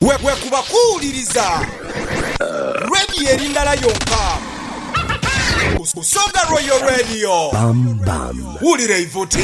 Bwekuba kuwuliriza Radio eri ndala yonka, Busoga Royal Radio. Wulira eivuti.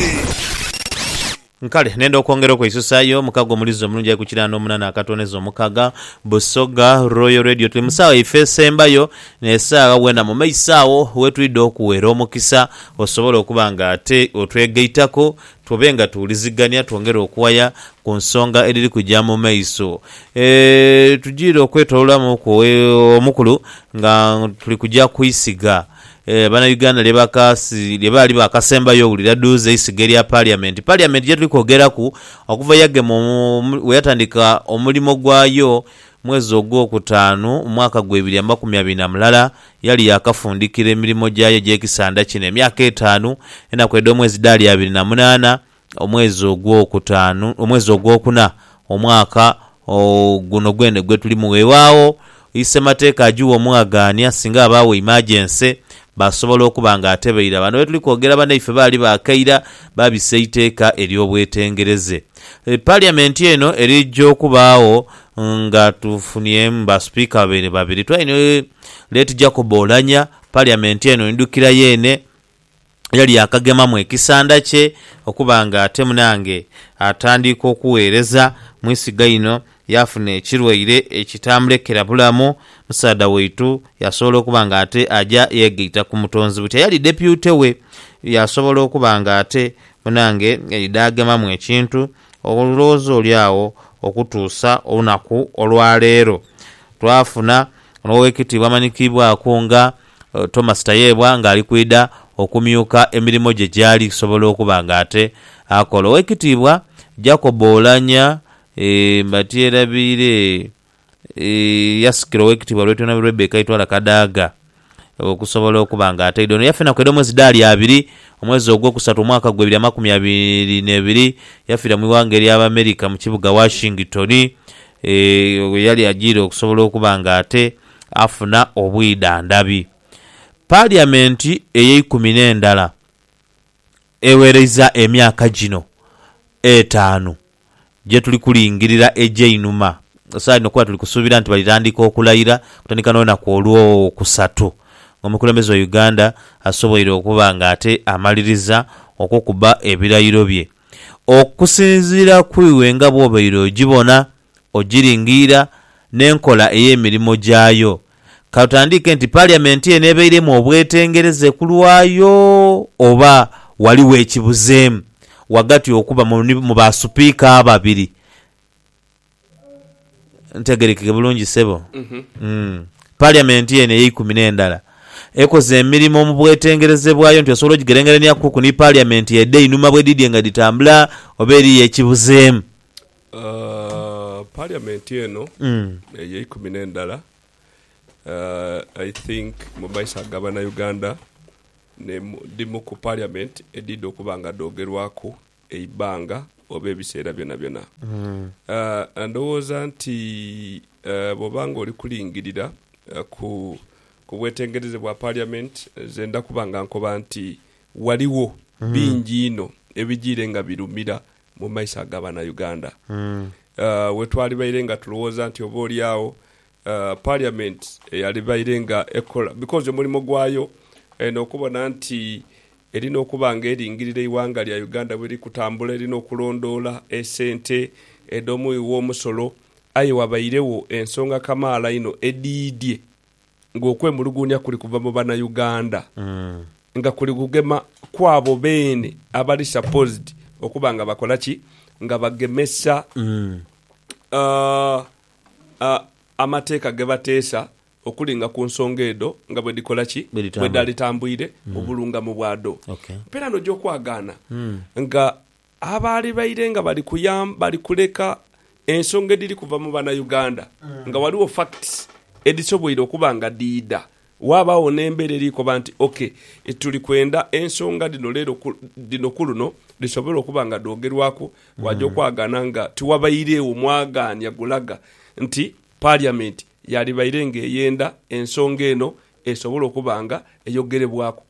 Kale nenda okwongera okweisusayo mukago omulizi omulungi aye kukira nomunana akatoneza omukaga. Busoga Royal Radio tuli musawa yaife esembayo, nesawa wena mumaiso awo wetwidha okuwera omukisa osobole okuba nga ate otwegaitako Tube nga tuwulizigania twongere okuwaya ku nsonga edhiri kuja mu maiso. E, tujiire okwetoloolamuku e, omukulu nga tuli kuja ku isiga e, Banauganda lye bakasi, lye baali baakasembayo owulira duuzi, eisiga erya Parliament. Parliament gye tuli kwogeraku, okuva yagema omu, bwe yatandika omulimo gwayo mwezi ogw'okutaanu mu mwaka gwa ibiri amakumi abiri na mulala, Yali yaakafundikira emirimo gyayo egy'ekisanda kino emyaka etaanu, enaku edh'omwezi dhaali abiri na munaana, omwezi ogwokutaanu, omwezi ogwokuna, omwaka guno gwene gwe tulimu. Weewaawo, isemateeka agigha omwagaania singa abaawo imajense, baasobola okuba nga ate baira. Bano be tuli kwogera banaife baali baakaira, baabisa eiteeka ery'obwetengereze. Paliamenti eno erija okubaagho nga tufunyemu Basipiika babaire babiri. Twalina. Late Jacob Oulanyah, Parliament eno ndidhukira yeene yali yakagemamu ekisanda kye okuba nga ate munange atandiika okuweereza mwisiga ino yafuna ekirwaire ekitamulekera bulamu, musaadha waitu yasobola okuba nga ate aja yegaita ku mutonzi buti eyali Deputy we yasobola okuba nga ate munange yaidha agemamu ekintu Olowooza oli agho okutuusa olunaku olwaleero. Twafuna n'Owekitiibwa amanyikiibwaku nga Thomas Tayebwa nga ali kwidha okumyuka emirimo gye gyali kusobola okuba nga ate akola. Owekitiibwa Jacob Oulanyah Mbatyerabiire. yasikira owekitibwa Lwetuna Rebecca Itwala Kadaga okusobola okuba nga ataidwa. Ono yafina kweda omwezi Daali abiri omwezi ogwokusatu omwaka gwa ebiri amakumi abiri nebiri yafira mwiwanga erya Abamerica mukibuga Washington weyali ajiire okusobola okuba nga ate afuna obwidhandhabi. Parliament eyeikumi nendala. Egheereza emyaka gino etaanu gye tuli kulingirira egy'einhuma, esaagha dhino kuba tuli kusuubira nti balitandika okulayira okutandika n'olunaku Olwokusatu ng'omukulembeze wa Uganda asoboire okuba nga ate amaliriza okukuba ebirayiro bye. Okusinziira ku iwe nga bw'obaire ogibona, ogiringiira n'enkola ey'emirimo gyayo, Ka tutandiike nti Parliament eno ebairemu obwetengereze ku lwayo oba ghaligho ekibuzeemu ghagati okuba mu ba Supiika ababiri. Ntegerekeke bulungi sebo? Parliament eno eyeikumi n'endala ekoze emirimo mu bwetengereze bwayo nti osobola ogigerengeraniakuku ni Parliament edh'einhuma bwedhidhye nga dhitambula oba eriyo ekibuzeemu? Parliament eno eyeikumi nendala I think mumaiso agabana Uganda ndi mu ku parliament edidha okuba nga dhogerwaku eibanga oba ebiseera byonabyona. Ndhowooza nti bwoba nga oli kulingirira ku bwetengereze bwa parliament nzenda kuba nga nkoba nti ghaligho bingi inho ebijiire nga birumira mu maiso aga bana Uganda wetwalibaire nga tulowooza nti oba oli agho parliament eyalibaire nga ekola because omulimo gwayo eno okubona nti erina okuba nga eringirira eighanga lya Uganda bweliri kutambula erina okulondoola esente edho mughi ghomusolo aye wabairegho ensonga kamaala inho edhiidhie nga okwemuluguunia kuli kuva mu banauganda nga kuli kugema kwabo beene abali supposed okuba nga bakola ki? Nga bagemesa amateeka gebateesa okuli nga ku nsonga edho nga bwedhikola ki? Bwedhalitambuire mu bulungamu bwadho. Mperani oja okwagaana nga Abaali baire nga bali kuyamba bali kuleka ensonga edhiri kuva mu Banauganda nga ghaligho facts edhisoboire okuba nga dhiidha, waabagho n'embeera eri koba nti ok, tuli kwenda ensonga dhino leero dhino ku luno dhisobole okuba nga dhoogerwaku, waaja okwagaana nga tiwabairegho mwagaanya gulaga nti Parliament yaali baire nga eyenda ensonga eno esobole okuba nga eyogerebwaku.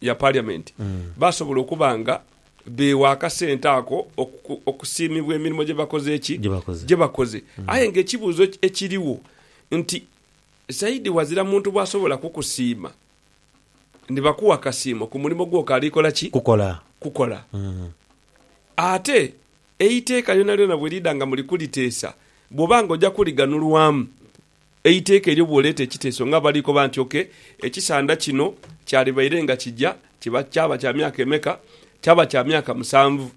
ya Parliament basobola okuba nga beewa akasente ako okusiimibwa emirimo gye bakoze ki? Gye bakoze. Aye nga ekibuuzo ekirigho nti Saidi ghazira muntu bw'asobola kukusiima ni bakuwa akasiimo ku mulimo gw'okaali kola ki? Kukola. Ate eiteeka lyonalyona bwe liidha nga muli kuliteesa, bw'oba nga oja kulighanulwamu Eiteeka elyo bw'oleeta ekiteeso nga bali koba nti, Oke, ekisanda kino kyalibaire nga kija kiba kyaba kya myaka emeka? Kyaba kya myaka musanvu.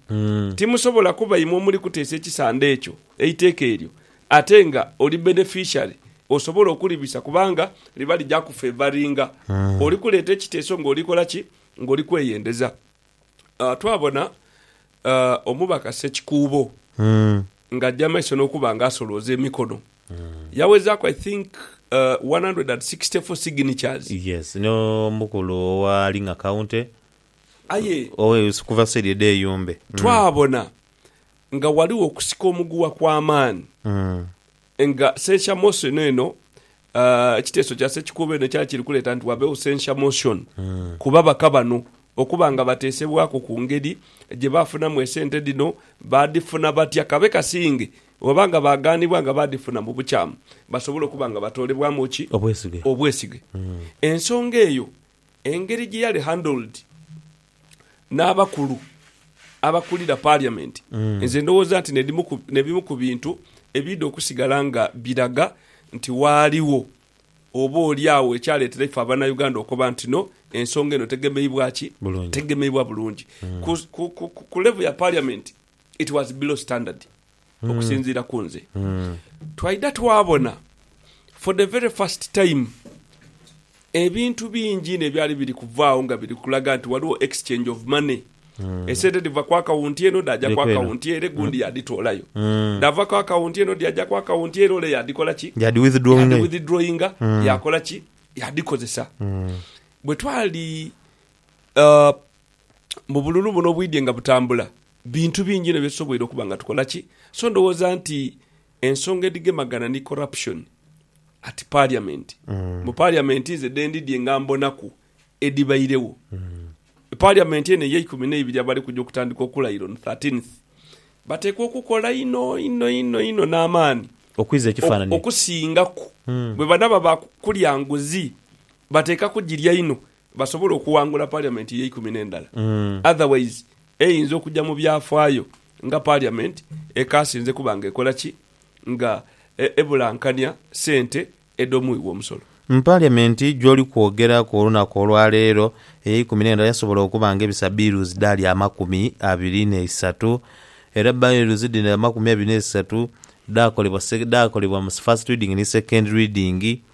Timusobola kuba imwe omuli kuteesa ekisanda ekyo, eiteeka elyo, ate nga oli beneficiary osobola okulibisa kubanga liba lija kufevaringa. Oli kuleeta ekiteeso nga oli kola ki? Nga oli kweyendeza. twabona omubaka Ssekikuubo nga aja mumaiso nokuba nga asolooza emikono yawezaku I think 164 signatures. Yes no mukulu owa Linga county Aye okuva side edho eyumbe. twabona nga waliwo okusika omuguwa kwamaani Nga censure motion eno, ekiteeso kya Ssekikuubo eno kyali kiri kuleeta nti wabeewo censure motion ku babaka bano okuba nga bateesebwaku ku ngeri gye baafunamu esente dhino, baadhifuna batya, kabe kasinge oba nga baagaanibwa nga baadhifuna mu bukyamu basobole okuba nga batoolebwamu ki? Obwesige. Obwesige. Ensonga eyo engeri gye yali handled n'abakulu abakulira parliament, nze ndowooza nti n'ebimu ku bintu ebiidha okusigala nga biraga nti waaliwo oba oli agho ekyaleetera ife abanauganda okoba nti no, ensonga eno tegemeibwa ki? Tegemeibwa bulungi. Ku level ya parliament it was below standard. okusinziira ku nze. Twaidha twabona for the very first time ebintu bingi inho ebyali biri kuvaagho nga biri kulaga nti ghaligho exchange of money. Esente dhiva ku akawunti eno dhaaja ku akawunti ere gundi yaadhitoolayo. Dhaava ku akawunti eno dhyaja ku akawunti ere ole yaadhikola ki? Yaadhi-withdrawinga, yaakola ki? Yaadhikozesa. Bwe twali mu bululu buno obwidhie nga butambula, bintu bingi inho byetusoboire okuba nga tukola ki? So ndhowooza nti ensonga edhigemagana ni corruption at parliament, mu parliament nze dhendidhie nga mbonaku edhibairegho. Parliament eno eyeikumi neibiri abali kuja okutandika okulaira on thirteenth, batekwa okukola inho inho inho inho n'amaani Okwiza ekifanani. okusingaku bwebanaba ba kulya nguzi, batekwa kugirya inho basobola okuwangula Parliament eyeikumi n'endala otherwise eyinza okuja mu byafaayo nga Parliament ekaasinze kuba nga ekola ki? Nga ebulankania sente edh'omuwi w'omusolo. Mu Parliament gyoli kwogera ku olunaku olwaleero, eyeikumi n'endala yasobola okuba nga ebisa bills dhaali amakumi abiri n'eisatu era bills dhino amakumi abiri n'eisatu dhaakolebwa dhaakolebwa mu first reading ni second reading.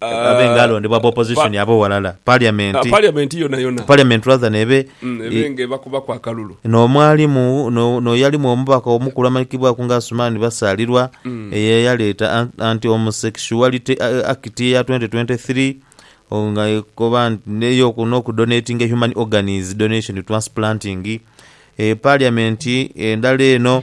Abe nga alondebwa aba opposition abo walala parliament Parliament yonayona parliament rather nebe mm, ebe nga ebakubaku akalulu. No mwalimu no no yalimu omubaka omukulu amanyikibwaku nga Asuman Basalirwa eye yaleeta Ant Anti Homosexuality Act eya twenti twenti three o nga ekoba neyo noku donatinga human organs donation transplanting e parliament endala eno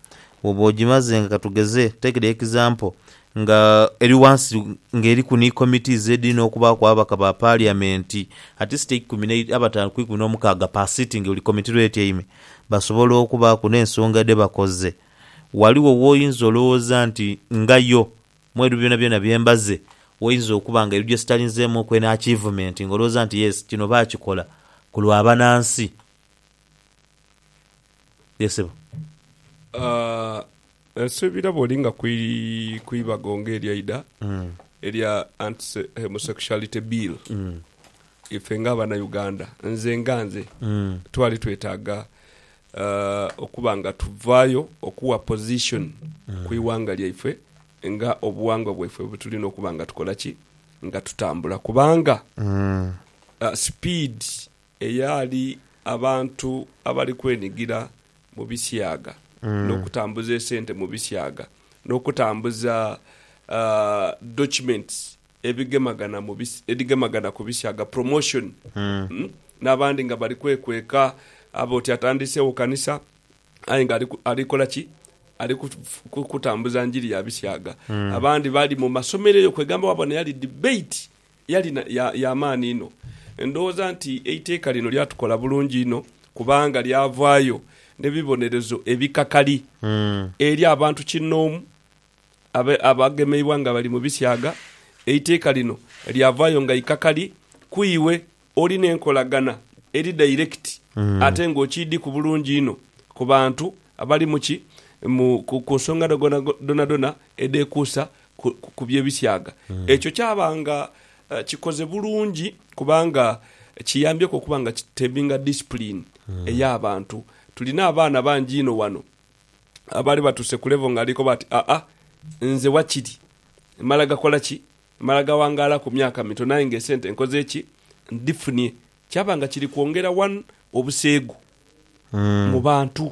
Bwoba ogimaze nga katugeze take the example nga eri wansi nga eriku ni committees ediri nokubaaku ababaka ba parliament atleast eikumi ne abataanu ku ikumi nomukaaga per sitting buli committee lwetyaime basobola okubaaku nensonga dhebakoze waliwo woyinza olowooza nti nga yo mwebyo byonabyona byembaze woyinza okuba nga eriyo gyesitalinzeemu oku eno achievement nga olowooza nti yes kino bakikola kulwa banansi. Ye sebo. Aah, nsuubira bw'olinga ku ku ibago ng'eryaidha erya Anti Homosexuality Bill, ife nga Abanauganda, nze nga nze, twali twetaaga okuba nga tuvaayo okuwa position ku ighanga lyaife nga obuwangwa bwaife bwe tulina okuba nga tukola ki? Nga tutambula. Kubanga sipiidi... Eyali abantu abali kwenigira mu bisiaga n'okutambuza esente mu bisiaga, n'okutambuza documents ebigemagana mu edhigemagana ku bisiaga, promotion, n'abandi nga bali kwekweka abe oti atandiisewo kanisa aye nga ali kola ki? Ali kutambuza njiri ya bisiaga. Abandi bali mu masomero eyo kwegamba wabona eyali debate Yali ya maani inho. Ndhoghoza nti eiteeka lino lyatukola bulungi inho kubanga lyavaayo n'ebibonerezo ebikakali eri abantu kinnoomu abagemeibwa nga bali mu bisyaga. Eiteeka lino lyavaayo nga ikakali ku iwe oli n'enkolagana eri dairekiti ate ng'okiidhiku bulungi inho ku bantu abalimu ki, ku nsonga dhonadhona edhekuusa ku bye bisiaga. Ekyo kyaba nga kikoze bulungi kubanga kiyambyeku okuba nga kitebinga discipline eya bantu. Tulina abaana bangi inho wano abali batuuse ku level nga ali koba ati aa nze wakiri mala gakola ki? Mala gawangaala ku myaka mitono aye nga esente nkoze ki? Ndhifunie. Kyaba nga kiri kwongera one obuseegu mu bantu.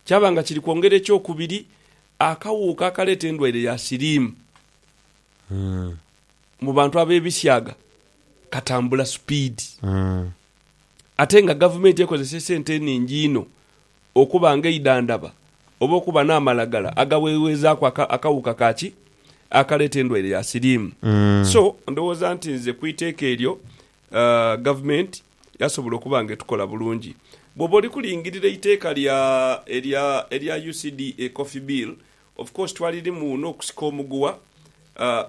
Kyaba nga kiri kwongera ekyokubiri Akawuuka akaleeta endwaire ya siriimu mu bantu ab'ebisyaga katambula supiidi ate nga gavumenti ekozesa esente eningi inho okuba nga eidhandhaba oba okuba n'amalagala agawewezaaku akawuuka ka ki akaleeta endwaire ya siriimu. So, ndowooza nti nze ku iteeka eryo Gavumenti yasobola okuba nga etukola bulungi. Bwoba oli kulingirira eiteeka lya erya erya UCDA Coffee Bill, of course twalirimu n'okusika omuguwa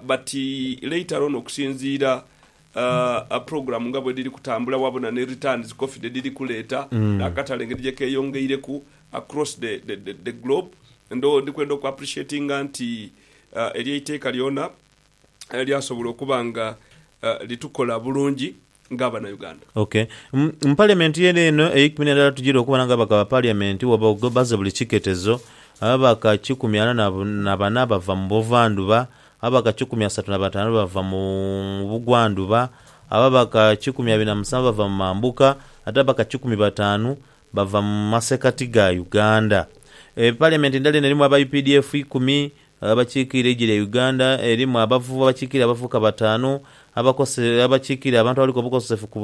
but later on okusinziira program nga bwedhiri kutambula waabona ni returns coffee dhedhiri kuleeta n'akatale engeri gye keeyongeireku across the the globe, ndho ndikwenda oku appreciatinga nti eryo eiteeka lyona. lyasobola okuba nga litukola bulungi nga abanauganda. Ok. Mu parliament yene eno eikumi nendala tugire okuba nga ababaka ba parliament wabawo baze buli kiketezo, ababaka kikumi ana na bana bava mu buvandhuba, ababaka kikumi asatu na batanu bava mu bugwandhuba, ababaka kikumi abiri na musanvu bava mu mambuka ate ababaka kikumi batanu bava mu masekati ga Uganda. Parliament endala eno erimu aba updf ikumi Abakiikirira eigi lya Uganda erimu abavu abakiikirira abavubuka bataanu, abakose abakiikirira abantu abaliku obukosefu ku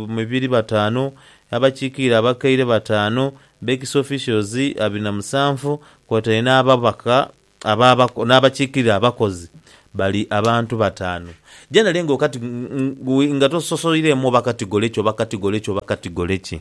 mibiri bataanu, abakiikirira abakaire bataanu, Bex Officials abiri na musanvu kwotaire n'ababaka aba n'abakiikirira abakozi bali abantu bataanu. Jenerali nga okati nga tososoireemu oba katigole ki oba katigole ki oba katigole ki.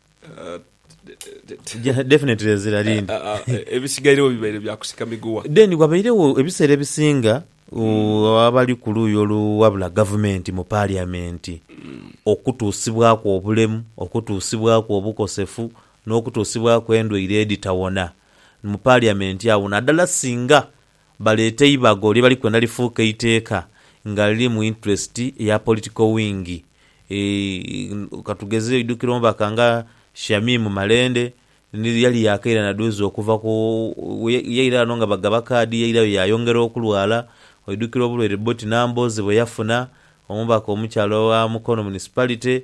Definitely ezira lindi. Ebisigairegho bibaire bya kusika miguwa. Then ghabairegho ebiseera ebisinga uh, abali ku luuyi oluwabula gavumenti mu parliament okutuusibwaku obulemu, okutuusibwaku obukosefu, n'okutuusibwaku endwaire edhitawona mu parliament agho, naddala singa baleete eibago lye bali kwenda lifuuke eiteeka nga liri mu interest ya political wing. Katugeze oidhukira omubaka nga Shamim Malende ni yali yaakaire na dhuuzi okuva ku, yaira ghano nga bagaba kaadi yairayo yaayongera okulwala. Oidhukira obulwaire Boti Nambooze bwe yafuna, omubaka omukyala owa Mukono Municipality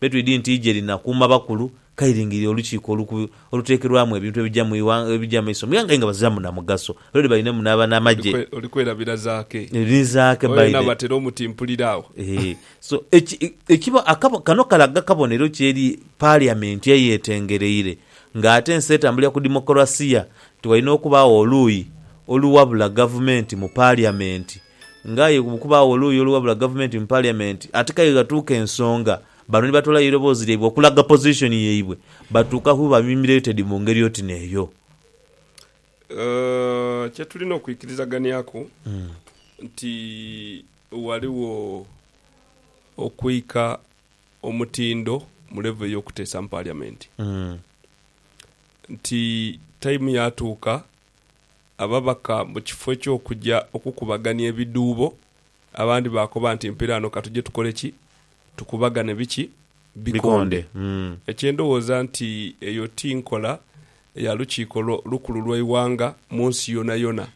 Be twidi nti ije lina kuuma bakulu kairingirire olukiiko oluku oluteekerwamu ebintu ebija mu ighang ebija amaiso mu ighanga aye nga baziramu na mugaso. Lore balinemu n'aba n'amagye. Oli kwerabira Zaake. Ni Zaake Oyo yenna Biden. batera omutimpulira agho. Eeh. So, eki, ekibo, akabo, kano kalaga kabonero ki eri Parliament eyetengereire, nga ate ensi etambulira ku demokolasiya, nti walina okubaagho oluuyi oluwabula gavumenti mu Parliament Nga aye bwe kubaagho oluuyi oluwabula gavumenti mu parliament, ate k'aye ghatuuka ensonga, bano ni batoolayo eiroboozi lyaibwe okulaga position yaibwe, batuuka kuba humiliated mu ngeri oti n'eyo. Kye tulina okwikirizaganiaku nti ghaligho okwika omutindo mu level ey'okuteesa mu parliament, nti time yaatuuka ababaka mu kifo eky'okuja okukubagania ebidhuubo, abandi baakoba nti, Mpiraano ka tuje tukole ki? Tukubagane biki? Bikonde. Kye ndowooza nti eyo ti nkola ya Lukiiko Lukulu lw'eighanga mu nsi yonayona.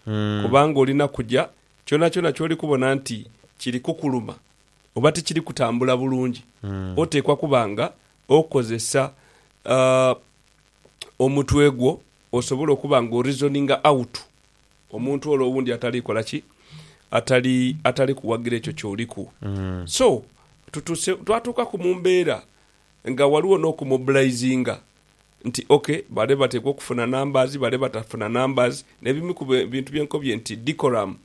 Kubanga olina kuja, kyonakyona ky'oli kubona nti kiri kukuluma oba tikiri kutambula bulungi, oteekwa kuba nga okozesa omutwe gwo Osobole okuba nga o-reasoninga out omuntu ole owundi atali kola ki? Atali, atali kuwagira ekyo kyoliku. So, tutuse, twatuukaku mu mbeera nga waliwo n'okumobilizinga nti ok, bale bateekwa okufuna numbers, bale batafuna numbers, n'ebimu ku bintu bye nkobye nti decorum,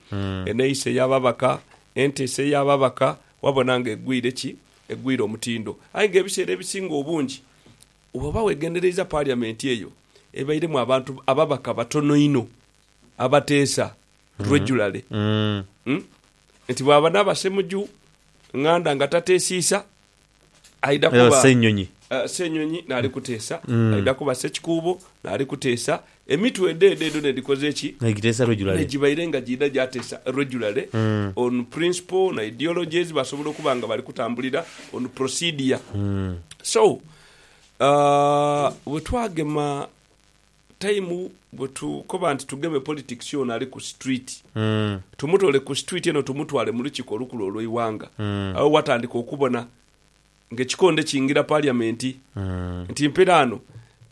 eneeyisa ey'ababaka, enteesa ey'ababaka, wabona nga egwire ki? Egwire omutindo. Aye nga ebiseera ebisinga obungi, bw'oba wegendereiza parliament eyo, ebairemu abantu ababaka batono inho abateesa regularly nti bwaba naaba Ssemuju Nganda nga tateesiisa aidha kuba Ssenyonyi naali kuteesa, aidha kuba Ssekikuubo naali kuteesa, emitwe edho edho edho nedhikoze ki? Negibaire nga giidha gyateesa regularly on principle na ideologies basobola okuba nga bali kutambulira on procedure. So Aah bwe twagema time bwe tukoba nti tugeme politics ono ali ku street tumutole ku street eno tumutwale mu lukiko olukulu olweiwanga agho watandika okubona nga ekikonde kingira parliament nti mperaano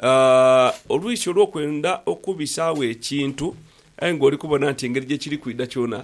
aah olwisi olwokwenda okubisaawo ekintu aye nga oli kubona nti engeri gye kiri kwidha kyona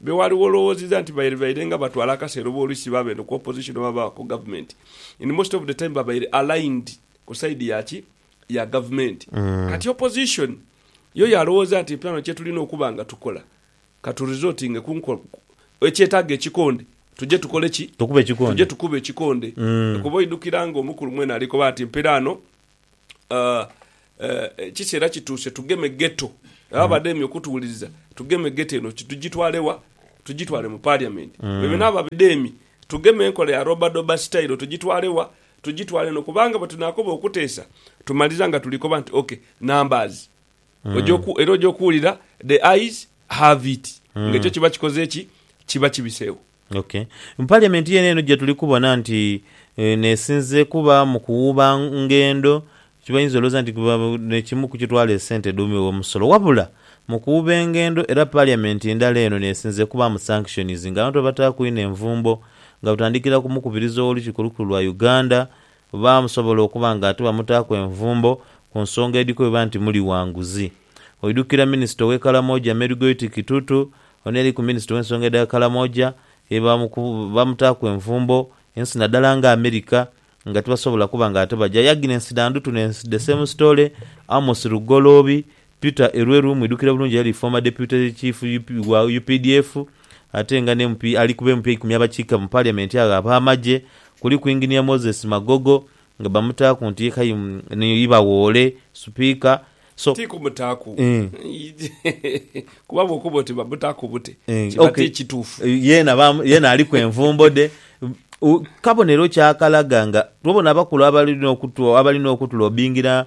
Be waali wolowoziza nti baire baire nga batwala akaseera oba oluisi baba eno ku opposition oba baba ku government in most of the time babaire aligned ku side ya ki? Ya government. Kati opposition yo yalowoza nti eplano kyetulina okuba nga tukola ka tu resortinge ku nko ekyetaga ekikonde tuje tukole ki? Tukube ekikonde. Tuje tukube ekikonde. Kuba oidukira nga omukulu mwene ali koba nti mperaano. ekiseera kituuse tugeme Ghetto. Abo abademye okutuwuliriza, tugeme Ghetto eno ki? Tugitwale wa? Tugitwale mu Parliament? Bebe n'abo abademye, tugeme enkola ya Robadoba Style tugitwale wa? Tugitwale eno kubanga bwe tunaakoba okuteesa, tumaliriza nga tuli koba nti ok, numbers. Oja oku, era oja okuwulira the ayes have it. Ng'ekyo kiba kikoze ki? Kiba kibiseewo. Ok. Mu parliament yene eno jetuli kubona nti nesinze kuba mu kuwuuba ngendo, kyebayinza olowooza nti nekimu ku kitwala esente edhuumi w'omusolo. Wabula mu kuwuuba engendo era parliament endala eno nesinze kubaamu sanctions nga abantu babataaku inho envumbo nga butandikira ku mukubiriza ow'olukiiko olukulu lwa Uganda, Oba musobola okuba nga tibamutaaku envumbo ku nsonga edhikweeba nti muli wa nguzi. Oidhukira minisita ow'e Karamoja Mary Goiti Kitutu, ono yali ku minisita ow'ensonga edha Karamoja ye baamutaaku envumbo ensi nadala nga America nga tibasobola kuba nga ate baja. Yaginensi dha Ndutu ne The Same Story, Amos Lugoloobi, Peter Elwelu mwidhukira bulungi eyali former Deputy Chief wa updf ate nga ni MP ali ku b'empya eikumi abakiika mu Parliament agho ab'amagye kuliku Engineer Moses Magogo nga bamutaaku nti ye kayi ni Ibawoole, Sipiika, so. Ti kumutaaku kuba bw'okoba oti bamutaaku bute kiba ti kituufu. Yeena baamu, yeena aliku envumbo dhe. Kabonero ki akalaga nga, tubona abakulu abali n'okutu, abali n'okutulobbingira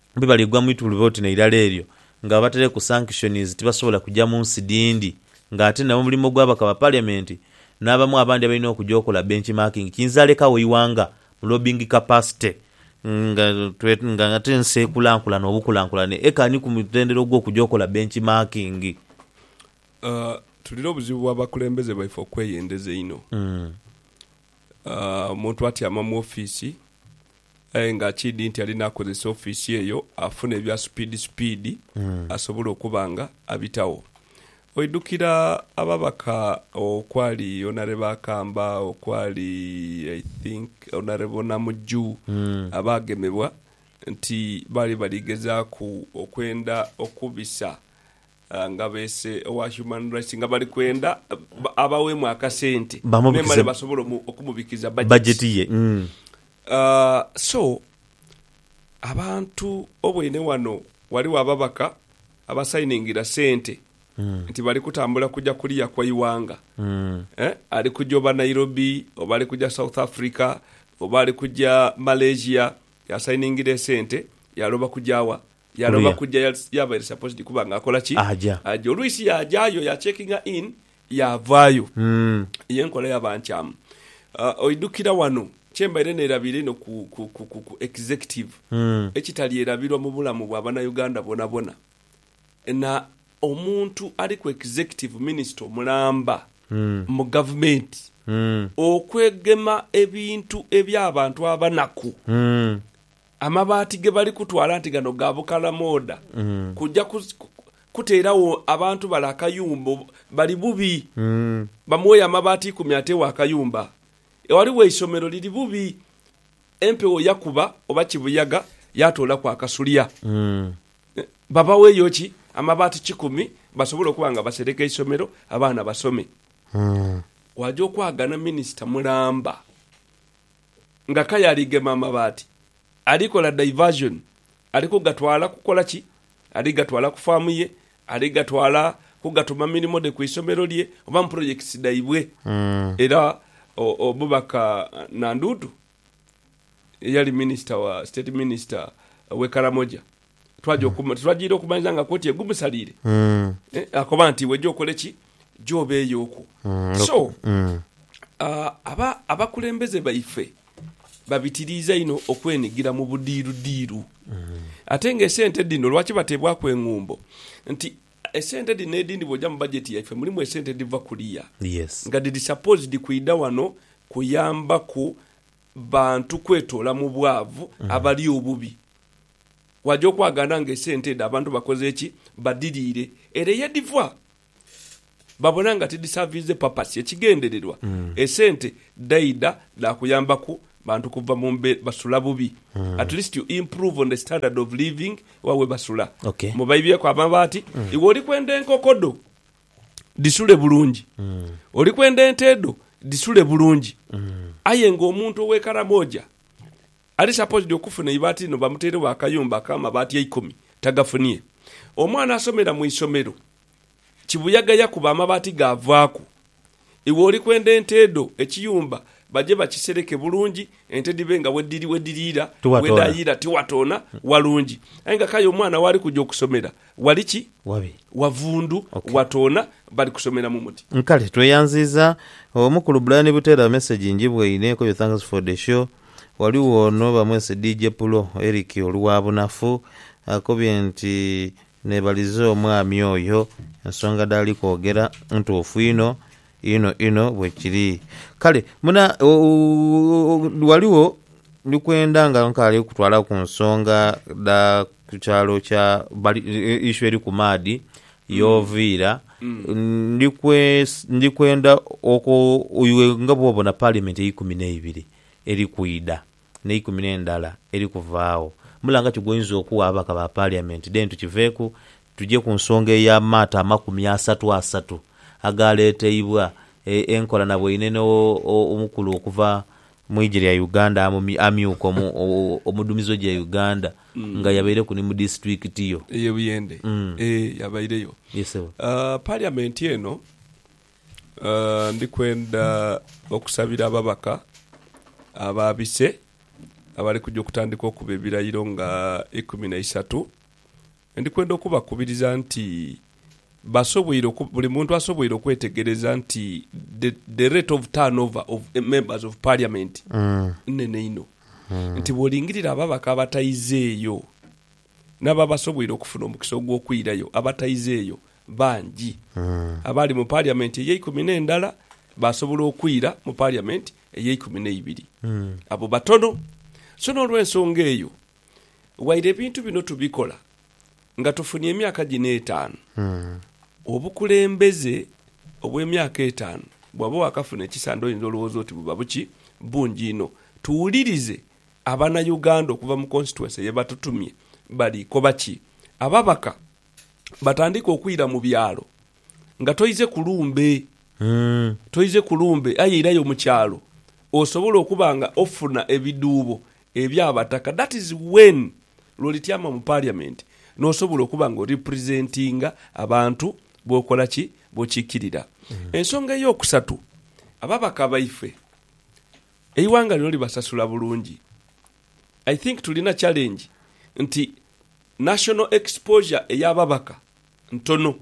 be baligwa mu itulube oti n'eirala eryo, nga babataireku sanctions tibasobola kuja mu nsi dhindi nga ate nabo mulimo gwa bakaba parliament n'abamu abandi abalina okuja okola benchmarking kiyinza lekagho eighanga mu lobbying capacity nga nga ate ensi ekulankulana obukulankulane eka ni ku mutendera ogw'okuja okola benchmarking. Tulina obuzibu bwa bakulembeze baife okweyendeza einho. muntu atyama mu ofiisi aye nga kiidhi nti alina akozesa ofiisi eyo afune ebya supiidi supiidi asobole okuba nga abitagho. Oidhukira ababaka okwali Honourable Akamba, okwali I think Honourable Namujju abaagemebwa nti baali bali gezaaku okwenda okubisa Nga beese owa Human Rights nga bali kwenda abaweemu akasente memale basobole okumubikiriza bajeti ye. So abantu oboine wano waliwo ababaka abasayiningira sente nti bali kutambula kuja kuliya kwa iwanga eh ali kuja oba Nairobi oba ali kuja South Africa oba ali kuja Malaysia yasayiningira esente yaloba kujawa? Yaloba kuja yaava eri supposed kuba nga akola ki? Aja. Olwisi yajayo ya checkinga in yavayo. Yenkola yaba nkyamu. Oidukira wano kyembaire nerabiira einho ku executive ekitalierabirwa mubulamu bwa banauganda bonabona na omuntu ali ku executive minister omulamba mu government okwegema ebintu ebyabantu abanaku Amabaati ge bali kutwala nti gano ga bukalamooda kuja kuteeragho abantu bale akayumba. Bali bubi. Bamuweeyo amabaati ikumi ateegho akayumba. Ghaligho eisomero liri bubi, empewo yakuba oba kibuyaga yaatoolaku akasulya. Babaweeyo ki? Amabaati kikumi basobole okuba nga basereka eisomero abaana basome. Waaja okwagana minisita mulamba nga kaya ali gema amabaati, ali kola diversion, ali ku gatwala kukola ki? Ali gatwala ku faamu ye, ali gatwala kugatuma mirimo dhe ku isomero lye oba mu projects dhaibwe. Era omubaka Nandutu eyali minister wa, state minister we Karamoja twaja oku, titwajiire okumanhiza nga kooti egumusaliire. Eh, akoba nti iwe gy'okole ki? Gy'obeeyo okwo. So, ah, aba, abakulembeze baife babitiriiza inho okwenigira mu budiirudiiru. Ate nga esente dhino lwaki bateebwaku eng'umbo? Nti esente dhino edhindi bw'oja mu bajeti yaife mulimu esente edhiva kuliya, Yes. nga dhiri supposed kwidha wano kuyambaku bantu kwetoola mu bwavu abali obubi. Waja okwagaana nga esente edho abantu bakoze ki? Badiriire. Ere yedhiva babona nga tidhisavinze papasi. Ekigendererwa esente dhaidha dhakuyambaku bantu kuva mu mbeera, basula bubi, at least you improve on the standard of living wa webasula. Mubaibyeku amabaati, iwe oli kwenda enkoko dho dhisule bulungi, oli kwenda ente dho dhisule bulungi. Aye nga omuntu owe Karamoja. Ali saposidi okufuna eibaati lino bamuteiregho akayumba akamabaati eikumi tagafunie. Omwana asomera mu isomero kibuyaga yakuba amabaati gaavaaku. Iwe oli kwenda ente dho, ekiyumba baje bakisereke bulungi ente dhibe nga wediriira, wedaayiira tiwatoona, walungi. Aye nga k'aye omwana waali kuja okusomera wali ki? Wavundu, watoona, bali kusomera mu muti. Kale tweyanziiza Omukulu Brian Butera message njibwaine ko your thanks for the show. Ghaligho ono bamwese DJ Pulo, Eric Oluwabunafu, akobye nti nebalize omwami oyo ensonga dhaali kwogera ntuufu inho inho inho bwekiri. Kale muna ghaligho ndi kwenda nga nkaali kutwala ku nsonga dha ku kyalo kya issue eri ku maadhi Y'oviira, ndi kwe, ndi kwenda okwo, iwe nga bw'obona Paalimenti eikumi n'eibiri eri kwidha, n'eikumi n'endala eri kuvaagho, mulanga ki gw'oinza okugha ababaka ba Paaliamenti? Then tukiveeku, tuje ku nsonga ey'amaato amakumi asatu asatu agaaleeteibwa, e, enkola na bweine n'o, o, omukulu okuva mu ije lya Uganda amyuka omudhumizi we gya Uganda nga yabaireku ni mu disitulikiti yo eye Buyende ee yabaireyo parliament eno. Ndikwenda okusabira ababaka aba bise abali kuja okutandika okuba ebilairo nga ikumi na isatu Ndi kwenda okubakubiriza nti basoboire oku, buli muntu asoboire okwetegereza nti the, the rate of turnover of members of parliament nnene inho. Nti bwolingirira ababaka abataizeeyo n'abo abasoboire okufuna omukisa ogw'okwirayo abataizeeyo bangi. Abaali mu parliament ey'eikumi n'endala baasobola okwira mu parliament ey'eikumi n'eibiri. Abo batono. So n'olw'ensonga eyo, Waire ebintu bino tubikola nga tufunye emyaka gino etaanu, obukulembeze obw'emyaka etaanu bwaba wakafuna ekisande oyinza olowooza oti buba buki? Bungi inho. Tuwulirize abana Uganda okuva mu constituency ye batutumye bali koba ki? Ababaka batandike okwira mu byalo nga toize ku lumbe, toize ku lumbe aye irayo mu kyalo osobole okuba nga ofuna ebidhuubo Ebya bataka that is when lwo lityama mu parliament nosobola okuba nga oripresentinga abantu bokola ki bokikirira. Ensonga eyokusatu ababaka baife eighanga lino libasasula bulungi I think tulina challenge nti national exposure eya babaka ntono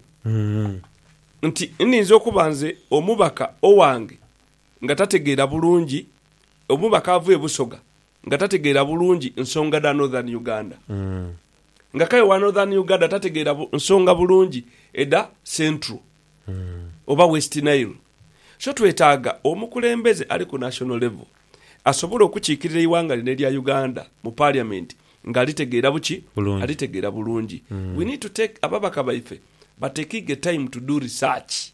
nti ninza okuba nze omubaka owange nga tategeera bulungi, omubaka ava e Busoga nga tategeera bulungi nsonga dha Northern Uganda, nga k'aye owa Northern Uganda tategeera nsonga bulungi edha Central oba West Nile. So twetaaga omukulembeze ali ku national level asobola okukiikirira eighanga lino erya Uganda mu parliament nga alitegeera buki? Alitegeera bulungi. We need to take, ababaka baife batekiige time to do research.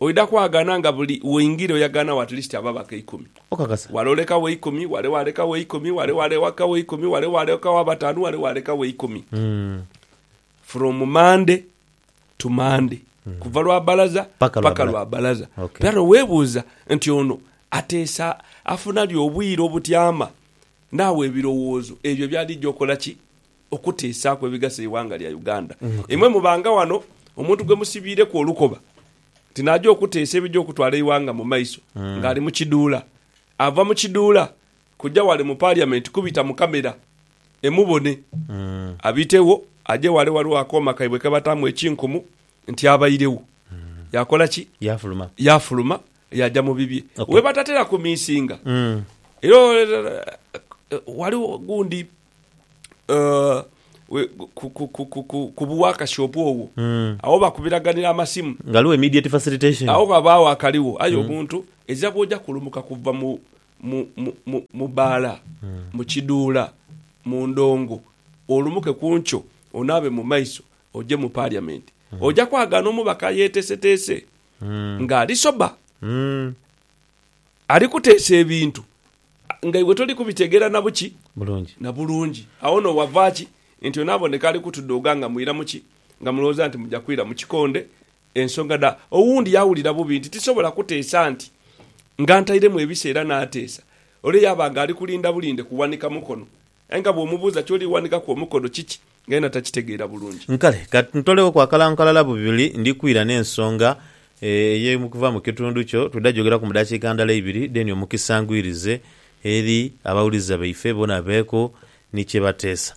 Oidha kwagana nga buli woingira oyaganagho at least ababaka eikumi. Okakasa? Wale olekagho eikumi, wale walekagho eikumi, wale walekagho eikumi, wale walekagho abatanu, wale walekagho eikumi. From Monday to Monday. Kuva lwa balaza paka lwa balaza. Era nowebuuza nti ono ateesa afuna li obwire obutyama? Naawe ebirowoozo ebyo byali eija okola ki? okutiisaaku ebigasa eighanga lya Uganda. Imwe mubanga wano omuntu gwe musibiireku olukoba nti naaja okuteesa ebija okutwala eighanga mu maiso ng'ali mu kiduula. Ava mu kiduula kuja wale mu Parliament kubita mu camera emubone. Abitegho aje wale waliwo akooma kaibwe ke bataamu ekinkumu nti abairegho. Yakola ki? Yaafuluma. Yaafuluma yaaja mu bibye. We batatera kumiisinga era waliwo gundi ku buwakasi obwogho agho bakubiraganira amasimu, ghaligho immediate facilitation, agho ghabagho akaligho aye omuntu ezira bwoja kulumuka kuva mu baala, mu kiduula, mu ndongo olumuke ku nkyo onaabe mu maiso oje mu parliament oja kwagaana omubaka ayetesetese nga ali sober. ali kuteesa ebintu nga iwe toli kubitegeera na buki? Bulungi. Na bulungi. Agho no wava ki nti ono aboneka ali kutudooga nga mwira mu ki? Nga mulowooza nti muja kwira mu kikonde? Ensonga dha. Owundi yawulira bubi nti tisobola kuteesa nti nga ntairemu ebiseera naateesa, ole yaaba nga ali kulinda bulinde kuwanika mukono Aye nga bw'omubuuza ky'oli ghandikaku omukono kiki, nga yena takitegeera bulungi. Nkale, ka ntolewooku akalango kalala bubiri ndi kwira n'ensonga eye okuva mu kitundu kyo. Twidha gyogeraku mu dakiika ndala ibiri, then omukisa ngwirize eri abawuliriza baife bona babeeku ni kye bateesa.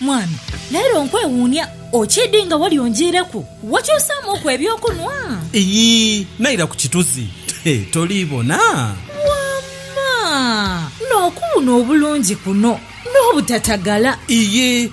Mwami, leero nkwewuunia. Okiidhi nga wali onjiireku? Wakyusaamuuku eby'okunhwa? Iyii, naira ku kituzi. Toli bona? Wamma! N'okuwuuna obulungi kuno n'obutatagala! Iyii,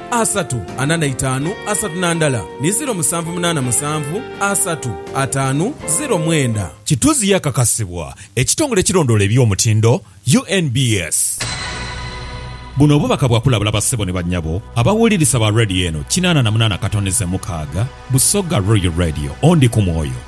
asatu ana na itaanu asatu na ndala ni ziro musanvu munaana musanvu asatu ataanu ziro mwenda. Kituzi yakakasibwa ekitongole ekirondoola eby'omutindo, UNBS. Buno obubaka bwa kulabula bassebo ni bannyabo abawulirisa ba Radio eno kinaana na munaana katonize mukaaga, Busoga Royal Radio. Ondi ku mwoyo.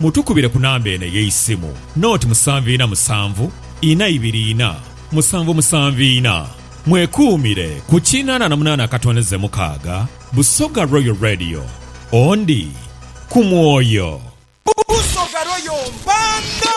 Mutukubire ku namba eno ey'eisimu, noti musanvu ina musanvu, ina ibiri ina, musanvu musanvu ina. Mwekuumire ku kinana na munana akatondeze mukaaga, Busoga Royal Radio. Ondi ku mwoyo. Busoga Royal Mpanda.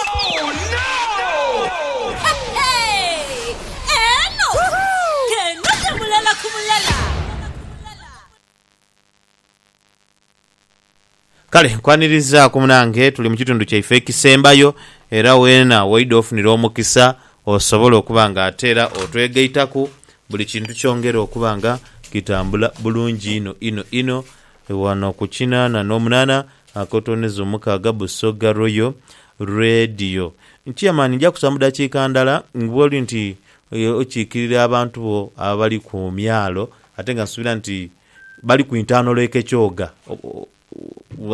Kale nkwanirizaku munange tuli mukitundu kyaife ekisembayo era wena woidha ofunira omukisa osobole okuba nga ate era otwegaitaku buli kintu kyongere okuba nga kitambula bulungi inho inho inho wano ku kinana nomunana akotoneza omukaaga Busoga Royal Radio Chairman nja kusa mudakika ndala bwoli nti okikirira abantu bo abali kumyalo ate nga nsubira nti Bali ku intaano lwa Ekekyoga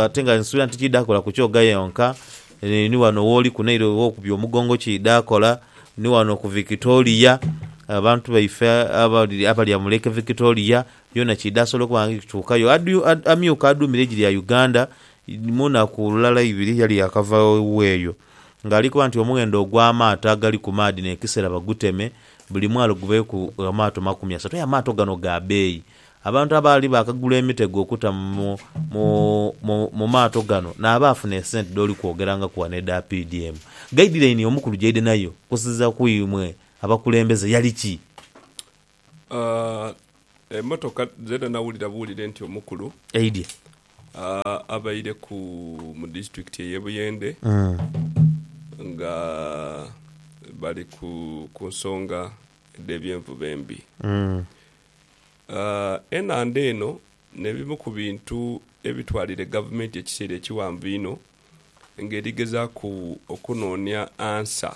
ate nga nsuubira nti tikiidha kola ku Kyoga yonka, ni wano wooli ku Nile ow'okubya omugongo kiidha kola, ni wano ku Victoria, abantu baife abalya mu Lake Victoria yoona kiidha sobola okuba nga kituukayo. Amyuka aduumira eigi lya Uganda mu naku lulala ibiri yali yaakava eweeyo nga ali kuba nti omughendo ogw'amaato agali ku maadhi n'ekisera baguteme, buli mwalo gubeeku amaato makumi asatu. Aye amaato gano ga beeyi. Abantu abaali baakagula emitego okuta mu maato gano n'abaafuna esente dh'oli kwogerangaku ghano edha PDM. Gayidilaini omukulu gy'aidha nayo okusinziira ku imwe abakulembeze yali ki? Aah emotoka zena nawulira buwulire nti omukulu Eidye. aah abaire ku mu district eye Buyende nga bali ku kunsonga dhe byenvuba embi. Aah enhandha eno nebimu ku bintu ebitwalire gavumenti ekiseera ekiwanvu inho nga erigezaku okunonia answer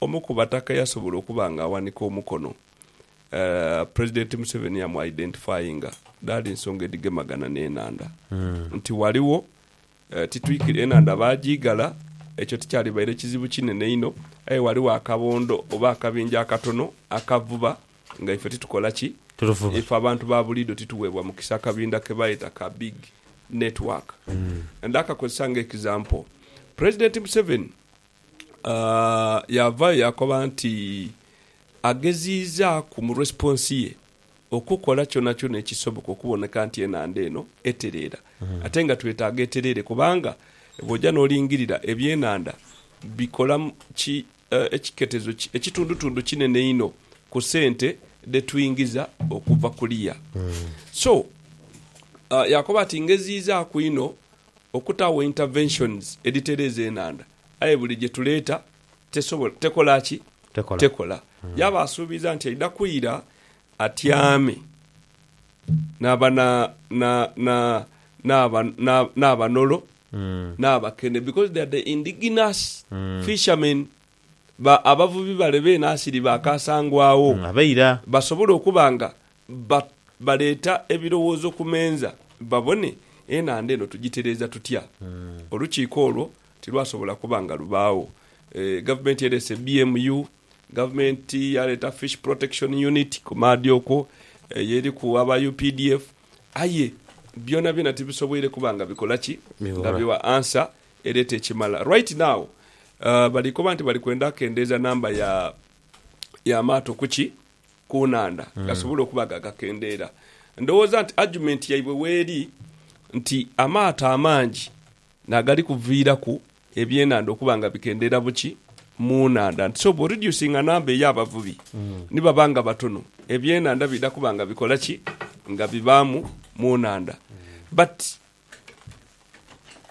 Omu ku bataka eyasobola okuba nga aghanika omukono President Museveni yamu identifyinga dhaali nsonga edhigemagana n'enhandha nti ghaligho titwikiriza enhandha baagiigala, ekyo tikyalibaire kizibu kinene inho aye ghaligho akabondo oba akabinja akatono akavuba nga ife titukola ki? Ife abantu ba buliidho tituweebwa mukisa akabinda ke bayeta ka Big Network. Ndhakakozesa ng'example, President Museveni Yaavayo yaakoba nti ageziizaaku mu resiponsi ye okukola kyonakyona ekisoboka okuboneka nti enhandha eno etereera. Ate nga twetaaga etereere kubanga bw'oja n'olingirira ebyenhandha bikola ki ekiketezo ki ekitundutundu kinene inho ku sente dhe twingiza okuva kuliya. So yaakoba ati, Ngeziizaaku inho okutaagho interventions edhitereeza enhandha aye buli gye tuleeta tesobola, tekola ki? Tekola. Yaaba asuubiza nti aidha kwira atyame n'aba, na, na, na, n'aba, na, n'abanolo, n'abakene because they are the indigenous fishermen, ba, abavubi bale beene asiri ba kaasangwagho, basobole okuba nga Ba, baleeta ebirowoozo ku menza babone enhandha eno tugitereeza tutya. Olukiiko olwo tilwasobola kuba nga lubaagho. E, gavumenti ereese BMU, gavumenti yaleeta Fish Protection Unit ku maadhi okwo, eyo eriku aba updf, aye byonabyona tibisoboire kuba nga bikola ki? Nga Bighola. bigha answer ereeta ekimala. Right now, a, bali koba nti bali kwenda kendeeza namba ya, y'amaato ku ki? ku nhandha gasobole okuba nga gakendeera. Ndowooza nti argument yaibwe weeri nti amaato amangi nagali kuviiraku ebyenhandha okuba nga bikendeera buki mu nhandha nti so bwo reducinga number eyabavubi ni baba nga batono ebyenhandha bidha kuba nga bikola ki nga bibaamu mu nhandha but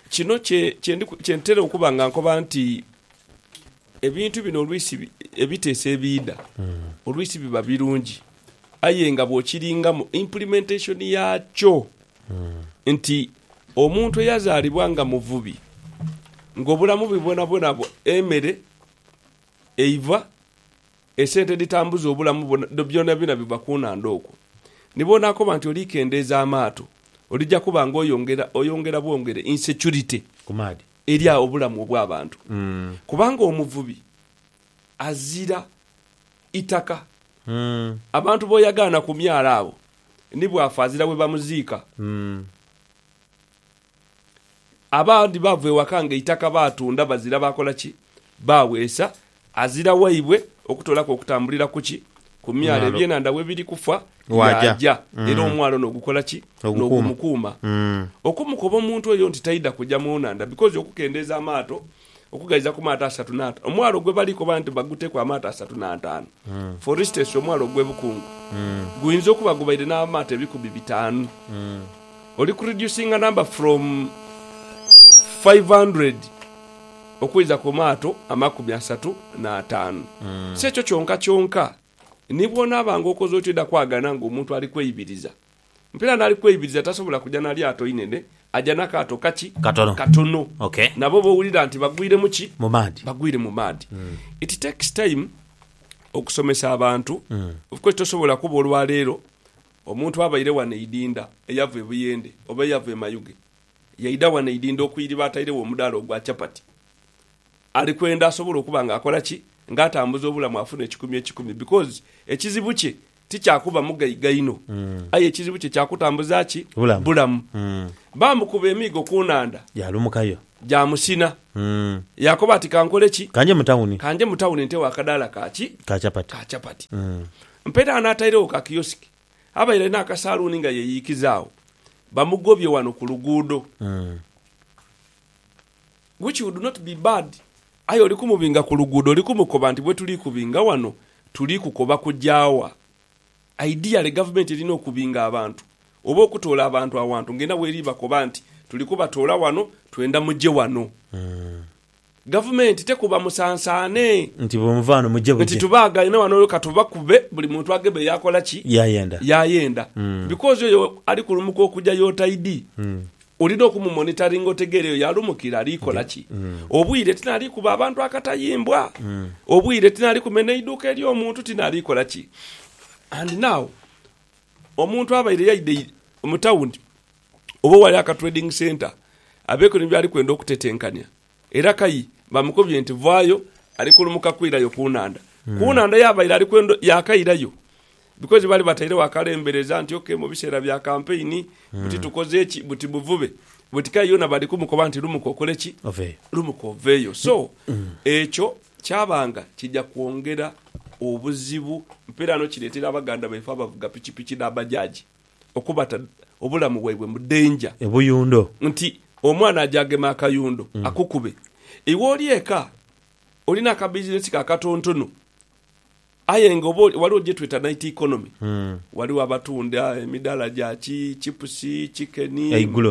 Kino kye kye ntera okuba nga nkoba nti ebintu bino oluisi ebiteeso ebiidha oluisi biba birungi aye nga bw'okiringamu implementation yaakyo nti omuntu eyazaalibwa nga muvubi ng'obulamu bwe bwonabwona emere eiva Esente edhitambuza obulamu bwo byonabyona biva ku nhandha okwo. Ni bw'onaakoba nti oli kendeeza amaato, olija kuba nga oyongera oyongera bwongere insecurity eri obulamu obw'abantu. Kubanga omuvubi azira itaka. Abantu b'oyagaana ku myalo abo ni bw'afa azira we bamuziika. Abandi baava ewaka nga eitaka baatunda bazira baakola ki? Baaweesa azira waibwe okutoolaku okutambulira ku ki? Ku myalo ebyenhandha we biri kufa, yaaja era omwalo n'ogukola ki? N'ogumukuuma. Okumukoba omuntu oyo nti taidha kuja mu nhandha bikoze okukendeeza amaato okughaiza ku maato asatu n'ataanu. Omwala ogwe bali koba nti baguteku amaato asatu n'ataanu, for instance omwala ogwe Bukungu, guinza okuba gubaire n'amaato ebikumi bitaanu. Oli ku reducinga number from five hundred okuiza ku maato amakumi asatu n'ataanu. Si ekyo kyonka kyonka, ni bw'onaabanga okoze otyo oidha kwagana ng'omuntu ali kweibiriza. Mpira n'ali kweibiriza tasobola kuja na lyato inene, aja na kaato kaki? Katono. Katono. Ok. Nabo b'owulira nti bagwire mu ki? Mu maadhi. Bagwire mu maadhi. It takes time okusomesa abantu. Of course tosobola kuba olwaleero omuntu abaire wano eidinda eyava e Buyende oba eyava e Mayuge yaidha wano eidinda okwiriba atairegho omudaala ogwa chapati ali kwenda asobole okuba nga akola ki? Nga atambuza obulamu afune ekikumi ekikumi because ekizibu kye ti kya kuba mugaiga inho, aye ekizibu kye kya kutambuza ki? Bulamu. Baamukuba emiigo ku nhandha. Yaalumukayo. Gyamusina. Yaakoba ati, Ka nkole ki? Ka nje mu tawuni. Ka nje mu tawuni ntewo akadaala ka ki? Ka chapati. Ka chapati. Mperagho n'atairegho ka kiyosiki. Abaire alina akasaluuni nga yeyiikiza agho. Bamugobye wano ku luguudo. Which would not be bad aye oli kumubinga ku luguudo oli kumukoba nti bwetuli kubinga wano tuli kukoba kugya wa? Ideally gavumenti erina okubinga abantu oba okutoola abantu awantu nga erina weri bakoba nti tuli kubatoola wano twenda mugye wano. Gavumenti tekuba musansaane. Nti bwemuva wano mugye bugye. Nti tubaagaine wano olwo katubakube buli muntu agebe yakola ki? Yayenda. Yayenda. Because oyo ali kulumuka okugya y'otaidi. Olina okumumonitaringa otegeere eyo yalumukira ali kola ki. Obwire tinaali kuba abantu akatayimbwa. Obwire tinaali kumena eiduuka ery'omuntu, tinaali kola ki. And now, omuntu abaire yaidha mu tawuni oba ewali aka trading centre abeeku ni byali kwenda okutetenkania, Era kai bamukobye nti, Vaayo, ali kulumuka kwirayo ku nhandha. Ku nhandha yaabaire ali kwendho yaakairayo. Bikozi baali batairegho akalembereza nti, OK, mu biseera bya kampeyini, buti tukoze ki? Buti buvube. Buti kale yoona bali kumukoba nti, Lumuka okole ki? Lumuka oveeyo. So, ekyo kyabanga kija kwongera obuzibu. Mpeeraano kireetera abaganda baife abavuga pikipiki n'abajaji. okubata obulamu bwaibwe mu danger. Ebuyundo. Nti omwana aje ageme akayundo akukube. Iwe oli eka, olina akabizinesi ko akatontono, aye nga oba ghaligho gyetweta night economy. Ghaligho abatunda emidaala gya ki chipusi, chicken,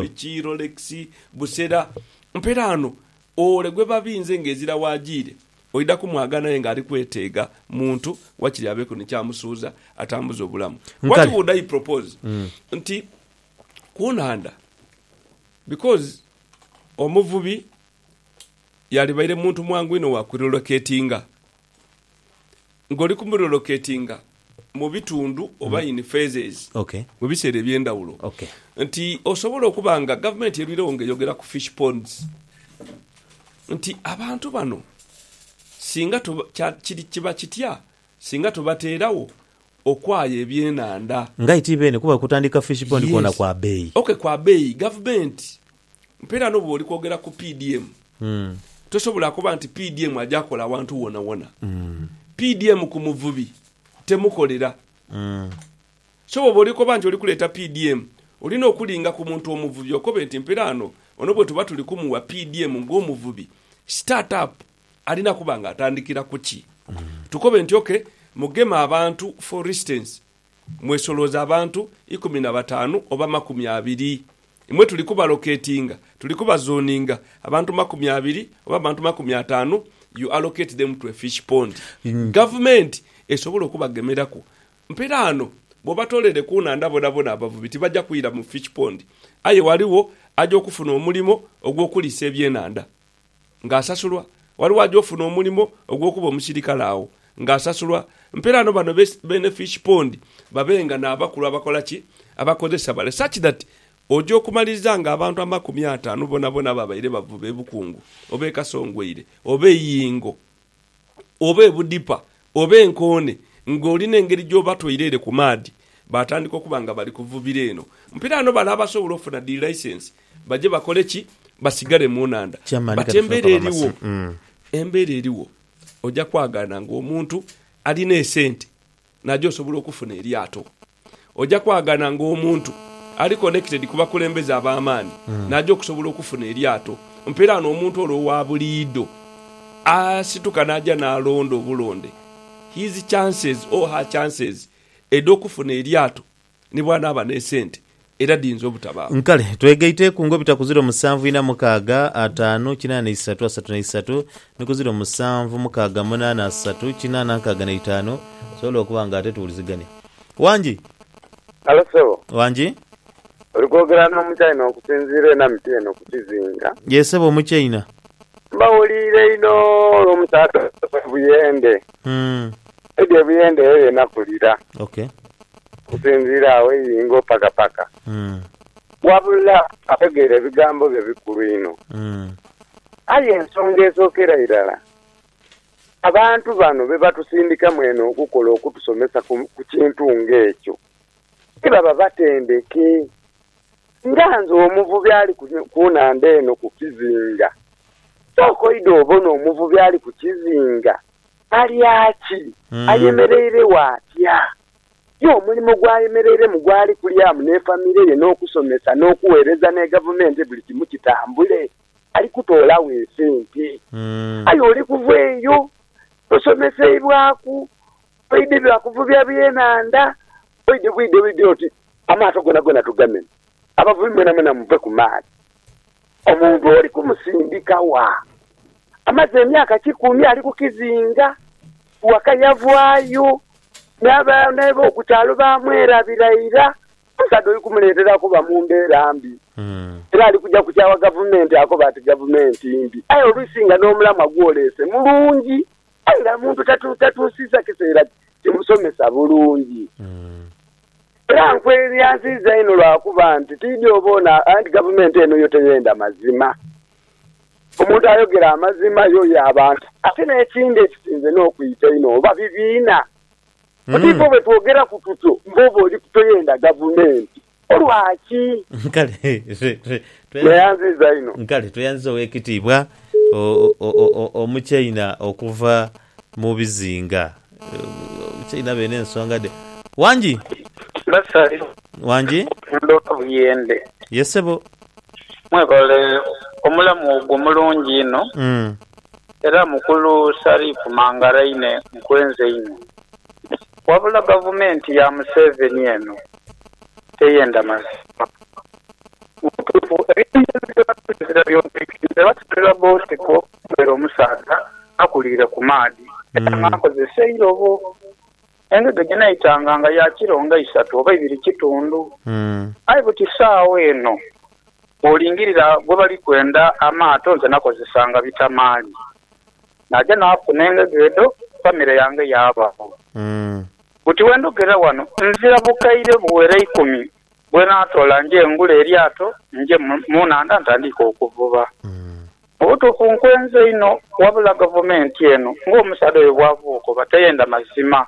biki, rolex, busera. Mperaano ole gwebabinze nga ezira waajiire, Oidha kumwagana aye nga ali kweteega muntu wakiri abeeku ni ky'amusuuza atambuze obulamu. What would I propose? Nti ku nhandha because omuvubi yalibaire muntu mwangu inho wa kurilocatinga. Ng'oli ku murelocatinga mu bitundu oba in phases mu biseera eby'endhawulo, nti osobola okuba nga gavumenti erwiregho nga eyogera ku fish ponds nti abantu bano singa kiba kitya singa tubateeragho okwaya ebyenhandha. Nga aye ti beene kuba kutandika fish pond kwona kwa beeyi. Ok kwa beeyi. Gavumenti Mpeera no bwoli kwogera ku PDM, tosobola kuba nti PDM aja kola awantu wonawona. PDM ku muvubi temukolera. So bwoba oli koba nti oli kuleeta PDM, olina okulinga ku muntu omuvubi okobe nti mpeera ano ono bwetuba tuli kumuwa PDM nga omuvubi, start up alina kuba nga atandikira kuki? Tukobe nti ok, Mugema abantu for instance Mwesolooza abantu ikumi na bataanu oba makumi abiri? Imwe tuli kubaloketinga, tuli kubazoninga, abantu makumi abiri oba abantu makumi ataanu, you allocate them to a fish pond. Gavumenti esobola okubagemeraku. Mperaano bw'obatoolere ku nhandha bonabona abavubi tibaja kwira mu fish pond. Aye ghaligho aja okufuna omulimo ogw'okuliisa ebyenhandha. ng'asasulwa, ghaligho aja ofuna omulimo ogw'okuba omusirikale agho ng'asasulwa. Mpeeraano bano beene fish pond babe nga n'abakulu abakola ki? Abakozesa bale such that oja okumaliriza ng'abantu amakumi ataanu bonabona ababaire bavuba e Bukungu oba e Kasongweire oba e Yingo oba ebudhipa oba enkoone ng'oli n'engeri gy'oba toire ere ku maadhi, baatandika okuba nga bali kuvubira eno. Mpiraano bale abasobola ofuna dhi laisensi baje bakole ki? Basigale mu nhandha. But embeera erigho, embeera erigho oja kwagaana ng'omuntu alina esente naja osobola okufuna eryato. Oja kwagana nga omuntu ali connected ku bakulembeze ab'amaani n'aja okusobola okufuna eryato. Mpeere ghano omuntu ole owa buliidho asituka n'aja n'alonda obulonde. His chances or her chances edh'okufuna eryato ni bw'anaaba n'esente era dhiyinza obutabaawo. Kale twegaiteeku ngo bita ku ziro musanvu ina mukaaga ataanu kinaana isatu asatu na isatu ni ku ziro musanvu mukaaga munaana asatu kinaana nkaaga na itaanu, tusobole okuba nga ate tuwulizigania. Wangi? Halo ssebo. Wangi? Oli kwogera n'Omuchaina okusinziira ena miti eno ku kizinga? Yee ssebo, Omuchaina. Mbahuliire inho olw'omusaadha ono Sebuyende. Edyo ebuyende eyo yona kulira. Ok. Okusinziira agho eyingo paka paka. Umm. Wabula ategeera ebigambo byo bikulu inho. Umm. Aye ensonga esookera irala, abantu bano be batusindikamu eno okukola okutusomesa ku ku kintu nga ekyo, ti baba batendeke. Nga nze omuvubi ali ku ku nhandha eno ku kizinga, sooka oidhe obone omuvubi ali ku kizinga Balya ki? Ayemereiregho atya? Ye omulimo gw'ayemereiremu gwali kulyamu n'efamire ye n'okusomesa n'okugheereza ni Gavumenti buli kimu kitambule? Ali kutoolagho esente. Aye oli kuva eyo tosomeseibwaku, oidhi lwa kuvubya byenhandha, oidhi bwidhebwidhe oti amaato goonagona tugamene. Abavubi mwenamwena muve ku maadhi. Omuntu oli kumusindika wa? Amaze emyaka kikumi ali ku kizinga, waka yavaayo, n'abaana b'oku kyalo baamwerabira ira. Omusaadha oli kumuleetera kuba mu mbeera mbi, era ali kuja kukyawa gavumenti akobe ati gavumenti mbi. Aye oluisi nga n'omulamwa gw'oleese mulungi. Aye nga omuntu tatuusiza kiseera kimusomesa bulungi. Era nkweryanziiza inho lwa kuba nti tiidhi oboona anti gavumenti eno yo teyenda mazima. Omuntu ayogera amazima y'oyo abantu. Ate n'ekindi ekisinze n'okwita einho oba bibiina. Butibwo bwe twogeraku tutyo, mbwoba oli toyenda gavumenti. Olwaki? Kale, twe, twe, tweyanzi, Neyanziza inho. kale, tweyanziza Ow'ekitiibwa o, o, o, o, Omuchaina okuva mu bizinga. Omuchaina abe n'ensonga dhe. Wangi? Basari, Wangi? Ndhoka Buyende. Ye, ssebo. Mwebale omulamu ogwo omulungi inho. Mm. Era Mukulu Sarifu Mangaraine, nkwenza inho. Wabula gavumenti ya Museveni eno teyenda mazima. Mu butuufu eby'omugenzi Ssebattu kizira by'ogeike nti eba situla bboosi ku okubeera omusaadha akuliire ku maadhi era nga akozesa eirobo. Engege gyenaitanga nga ya kiro nga isatu oba ibiri kitundu. Aye buti saagho eno bw'olingirira gwe bali kwenda amaato nze nakozesanga bitamaali. Naja naafuna engege edho, famire yange yaabagho. Buti bwe ndhogera ghano, nzira bukaire buwera eikumi bwe naatoola nje ngule eryato nje mu nhandha ntandiike okuvuba. Mu butuufu nkwenze inho, wabula gavumenti eno ng'omusaadha oyo bw'avuuka oba teyenda mazima.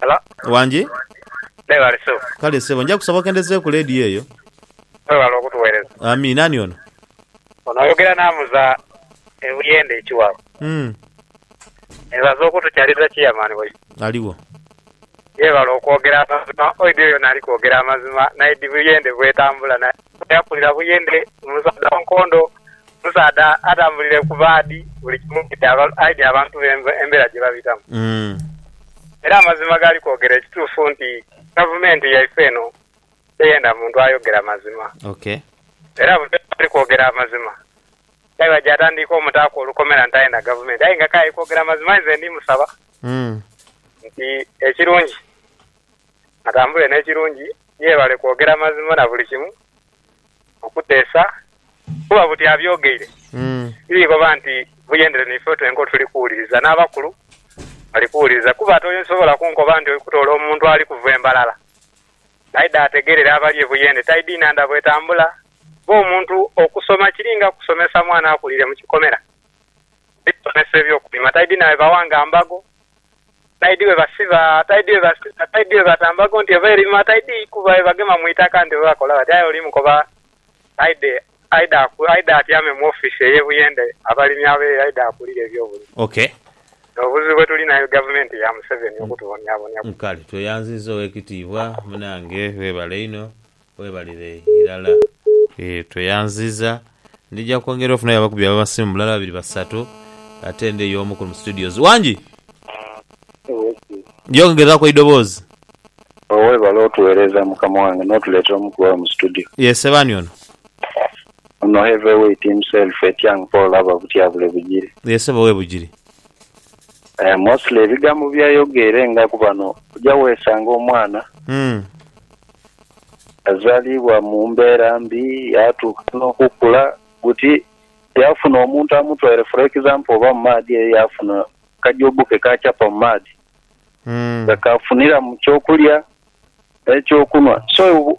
Hello. Wangi? Mwebale ssebo. Kale ssebo, nja kusaba okendezeeku leediyo eyo. Mwebale okutuweereza. Amiina. Ani ono? Ono oyogera n'amuza e Buyende e Kiwawa. Hmm. Neebaza okutukyaliza Chairman waife. Aliwo. Yeebale okwogera amazima. Oidhi oyo naali kwogera amazima naidhi Buyende bwetambula naye. Bali akulira buyende, omusaadha wa nkondo, omusaadha atambulira ku baadi buli kimu aidha abantu be embera gye babitamu. Era amazima gali kwogera ekituufu nti Gavumenti yaife eno teyenda muntu ayogera mazima. Era buli oyo ali kwogera amazima aye bwajja atandiika omutaaku olukomera nti aye na Gavumenti. Aye nga k'aye kwogera mazima inze ndi musaba nti ekirungi. atambule n'ekirungi, yeebale kwogera mazima na buli kimu okuteesa kuba buti abyogeire tiri koba nti buyendere naife twenka otuli kuwuliriza n'abakulu bali kuwuliriza kuba tosobola kunkoba nti oli kutoola omuntu ali kuva e Mbarara aidha ategeerere abali e Buyende taidhiina ndha bwetambula kuba omuntu okusoma kiri nga kusomesa mwana akulire mu kikomera. Aidha asomesa eby'okulima taidhiina bye bawa nga mbago Taidi we basiba, taidi we basiba, taidi we batamba ku nti oba erima, taidi kuba we bagema mu itaka nti oba bakola bati. Aye oli mukoba aidhe, aidhe aku, aidhe atyame mu office eye Buyende abalimi abeeyo aidhe akulire ebyobulimi. Ok. Nobuzibu bwe tulina ni gavumenti ya Museveni okutubonyabonya. Kale tweyanziza owekitiibwa munange webale inho. Webalire irala. Eeh tweyanziza. Ndija kwongera ofunayo abakubi abamasimu bulala babiri basatu ate ndi eyo omu kuno mu studios. Wangi! Yes. Yongeraku eidoboozi. Oh webale otuwereza mukama wange notuletera omu ku bawe mu studio. Ye ssebo ani ono? Ono heavy weight himself Etiang Paul aba Butyabule Bugiri. Ye ssebo we Bugiri. Eh mostly ebigambo byayogeire nga ku bano oja wesanga omwana Uhmm. yazalibwa mu mbera mbi yatuuka nokukula buti yafuna omuntu amutwaire for example oba mu maadhi eyo yafuna ka job ke kakyapa mu maadhi nga kafuniramu kyokulya ne kyokunwa so